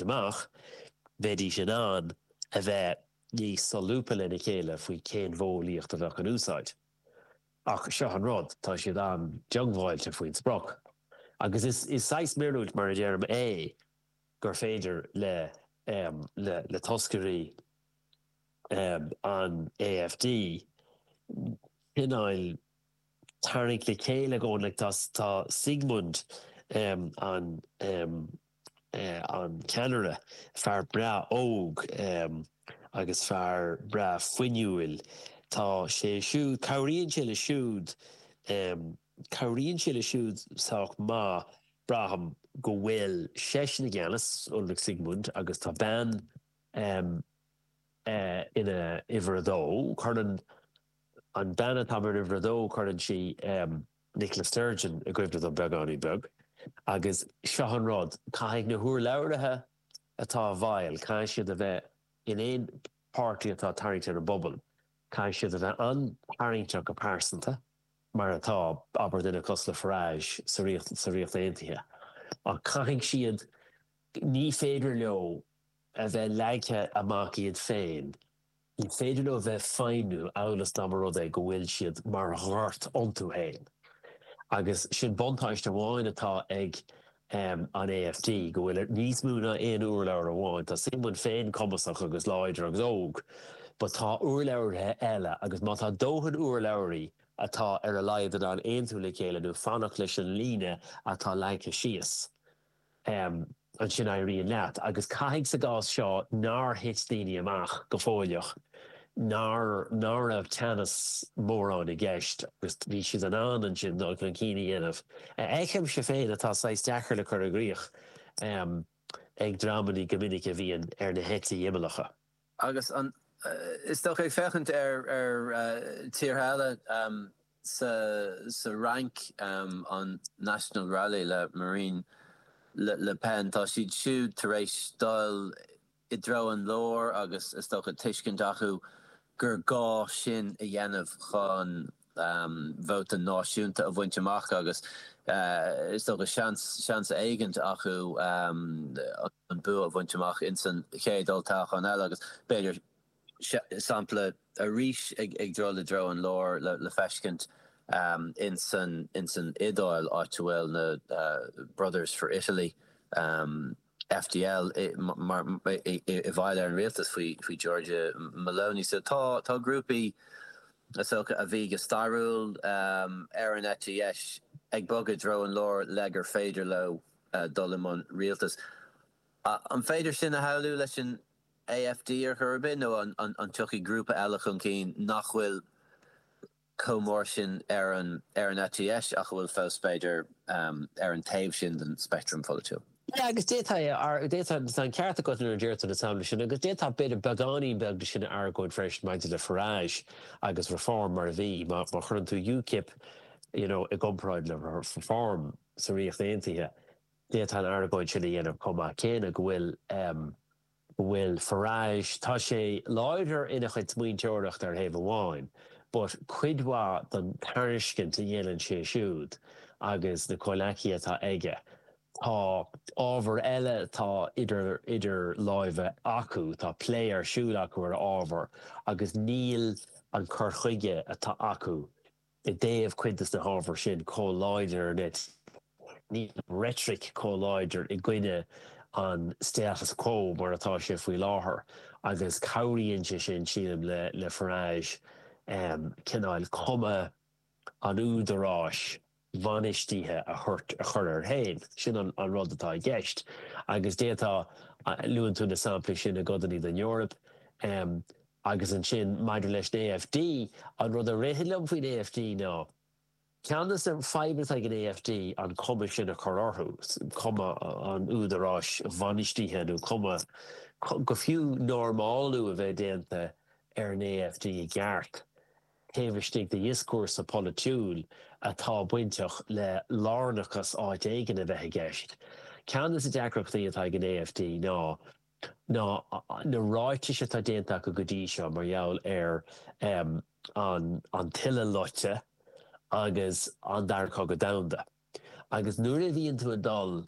amach, bheidís in ann a bheith níos solúbtha lena chéile faoi cén mhodheolaíocht a bheadh in úsáid. Ach seo an rud, tá siad an-diongbháilte faoin sprioc. Agus is saghas míorúilt, mar a deirim, é gur féidir le toscairí an AfD cineál tarraingt le chéile i gcónaí, tá Siegmund an. an ceannaire, fear breá óg agus fear breá fuinniúil. Tá sé siúd, cabhraíonn sé le siúd, cabhraíonn sé le siúd sách maith, braithim, go bhfuil seisean i gceannas, Ulrich Siegmund, agus tá bean ina uimhir a dó, cuireann an bean atá mar uimhir a dó, cuireann sí, Nicola Sturgeon i gcuimhne dom beagáinín beag. Agus seo an rud, caithfidh na húrlabhraithe atá i bhfeighil, caithfidh siad a bheith, in aon páirtí atá ag tarraingt ar an bpobal, caithfidh siad a bheith an-tarraingteach go pearsanta, mar atá, abair, duine cosúil le Farage sa Ríocht Aontaithe. Ach caithfidh siad, ní féidir leo a bheith leagtha amach iad féin. Ní féidir leo bheith ag feidhmiú amhail is dá mba rud é go bhfuil siad mar ghort iontu féin. Agus sin buntáiste amháin atá ag an AfD, go bhfuil níos mó ná aon úrlabhra amháin. Tá Siegmund féin cumasach agus láidir agus óg, but tá úrlabhraithe eile, agus má tá dóthain úrlabhraí atá ar a laghad in ann aontú le chéile nó fanacht leis an líne atá leagtha síos, ansin éiríonn leat. Agus caithfidh sa gcás seo nár thit daoine amach go fuilteach, nár ná raibh teannas mórán i gceist agus bhí siad in ann ansin dul chun cinn a dhéanamh, a fheicimse féin atá saghas deacair le cur i gcrích ag dreamannaí go minic a bhíonn ar na heití imeallacha. Agus is dócha, ag féachaint ar thíortha eile, sa Fhrainc, an National Rally le Marine Le Pen, tá siad siúd tar éis dul i dtreo an láir agus is dócha tuiscint acu gur gá sin a dhéanamh chun vóta náisiúnta a bhaint amach agus is dócha seans, seans éigint acu an bua a bhaint amach ins an chéad olltoghchán eile agus b'fhéidir sampla arís ag dul i dtreo an láir le feiscint ins an Iodáil, áit a bhfuil na Brothers for Italy. FDL i bhfeighil ar an rialtas faoi Giorgia Meloni. So tá grúpaí socair a bhí go stairiúil ar an eite dheis ag bogadh i dtreo an láir le gur féidir leo dul i mbun rialtais. An féidir sin a shamhlú leis an AfD ar chor ar bith nó an dtiocfaidh grúpa eile chun cinn nach bhfuil chomh mór sin ar an eite dheis ach a bhfuil fós, b'fhéidir, ar an taobh sin den speictream pholaitiúil. Agus d'fhéadfá, tá an ceart agat nuair a deir tú na samplaí sin, agus d'fhéadfá b'fhéidir beagáinín beag de sin a argóint freisin maidir le Farage agus Reform mar a bhí, má chuireann tú UKIP you know i gcomparáid le Reform sa Ríocht Aontaithe, d'fhéadfá an argóint sin a dhéanamh chomh maith céanna go bhfuil. go bhfuil Farage, tá sé láidir ina chuid smaointeoireachta ar thaobh amháin, but cuid mhaith den tairiscint a dhéanann sé siúd agus na comhleacaithe atá aige, tá ábhar eile atá idir idir láimhe acu, tá plé ar siúl acu ar ábhar agus níl an cur chuige atá acu i dtaobh cuid de na hábhair sin chomh láidir, níl, níl an reitric chomh láidir i gcoinne an status quo mar atá sé faoi láthair agus cabhraíonn sé sin, sílim, le Farage cineál cuma an údaráis bhainistithe a chur air féin. Sin an rud atá i gceist. Agus d'fhéadfá, luann tú na samplaí sin i gcodanna den Eoraip, Agus ansin, maidir leis an AfD, an rud a ritheann liom faoin AfD ná, ceann de na fadhbanna atá ag an AfD an chuma sin a chur orthu, cuma an údaráis bhainistithe nó cuma go fiú normálú a bheith déanta ar an AfD i gceart taobh istigh de dhioscúrsa polaitiúil atá bainteach le lárnachas áit éigin a bheith i gceist. Ceann de na deacrachtaí atá ag an AfD ná. ná na ráitis atá déanta acu go dtí seo mar gheall ar an tUileloscadh agus an Dara Cogadh Domhanda. Agus nuair a bhíonn tú ag dul